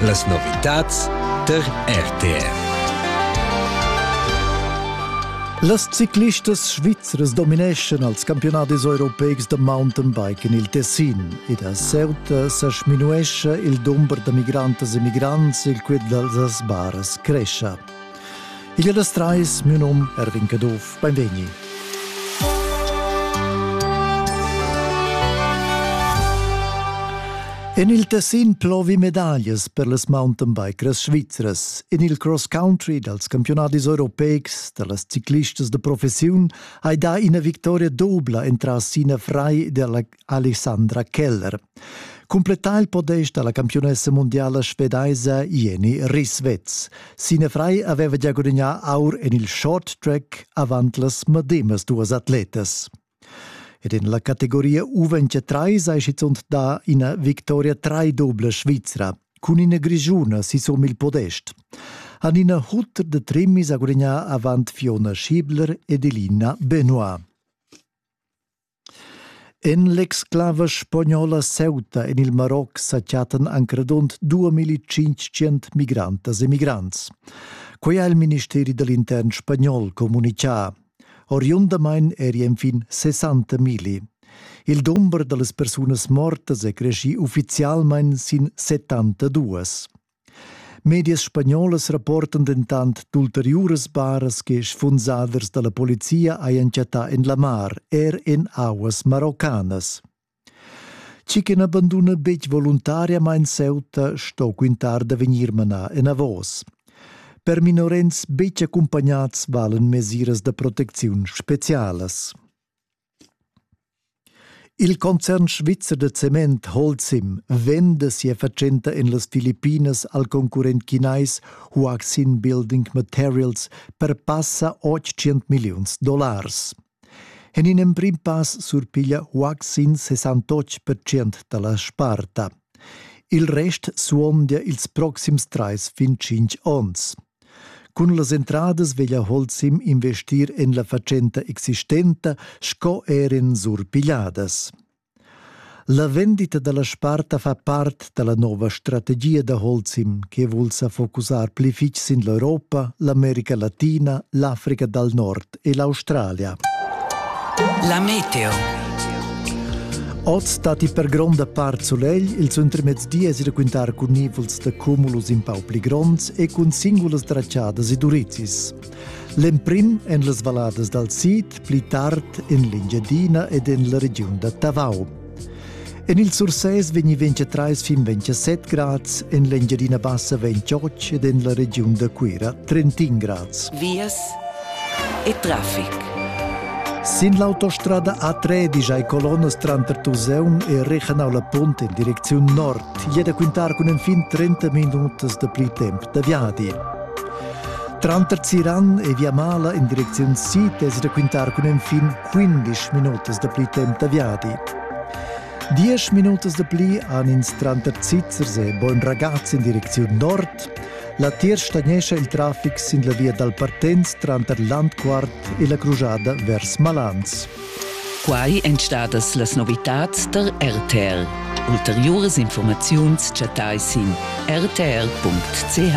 Las novitads tar RTR. Las ciclistas svizras domineschan als campiunadis europeics da mountainbike en il Tessin ed a Ceuta sa sminuescha il dumber da migrantas e migrants il quid dals baras crescha. Il das Treis, mio nom Erwin Caduff, benvegni. En il Tessin plovi medaglias per las mountainbikers svizras. En il cross country dals campionadis europeics da las ciclistas de professiun hai dà ina victoria dobla entras Sina Frei della Alessandra Keller. Cumplettà il podest dalla campiunessa mundiala svedaisa Jenny Risvetz. Sine Frei aveva già gudagnà aur en il short track avant las medemas duas atletas. Ed en la categoria U23 sei schizunt da ina victoria trai-dubla svizra cun ina grigiuna sisum il podest. Hanina Hutter de Trimmis ha gudagnà avant Fiona Schiebler ed Elina Benoit. En l'exclava spagnola ceuta en il Maroc sa chattan anc radund 2500 migrantas e migrants. Quai ha il ministeri da l'intern spagnol communitgà. Oriundamain eri enfin 60 migli. Il dumber da las persunas mortas è creschì uffizialmain sin 72. Medias spagnolas rapportan dentant d'ulteriuras baras che sfunsaders da la polizia hajan chattà en la mar, er en auas maroccanas. Chi che n'abanduna betg voluntariamain Ceuta sto quintar da vegnir manà enavos. Per minorens betg accumpagnads valen mesiras da protecziun spezialas. Il concern svizzer da cement Holcim venda sia fatschenta en las Filippinas al concurrent chinais Huaxin Building Materials per passa 800 milliuns dollars. En in emprim pass surpiglia Huaxin 68% da la sparta. Il rest suondia ils proxims trais fin tschintg onns. Cun las entradas veglia Holzim investir en la fatschenta existenta sco er en surpigliadas. La vendita da la sparta fa part da la nova strategia da Holzim che vul sa focusar pli fitg sin l'Europa, l'America Latina, l'Africa dal Nord. e l'Australia. La meteo. Oz datti per gronda part sulegl, ils intermezdi es raquintar cun nivels da cumulus in pau pli gronds e cun singulas draciadas e durizis. L'emprim en las valladas dal sid, pli tard en l'Engiadina ed en la regiun da Tavau. En il Sursès vegni 24 trais fin 27 grads, en l'Engiadina Bassa 28 ed en la regiun da Cuira 31 grads. Vias e traffic. Sin l'autostrada A3 digiai colonnas tranter Tuseun e Regenau la Punt in direcziun nord e da quintar cun enfin 30 minutas da pli temp da viadi. Tranter Ziran e Via Mala in direcziun sid es da quintar cun enfin quindisch minutas da pli temp da viadi. Diesch minutas da pli han ins tranter Zizzers e Bogn Ragaz in direcziun nord. Latiers stagnescha il traffic sin la via dal Partenz tranter Landquart e la crujada vers Malans. Quai èn stadas las novitads da RTL. Ulteriuras informaziuns chattai sin rtl.ch.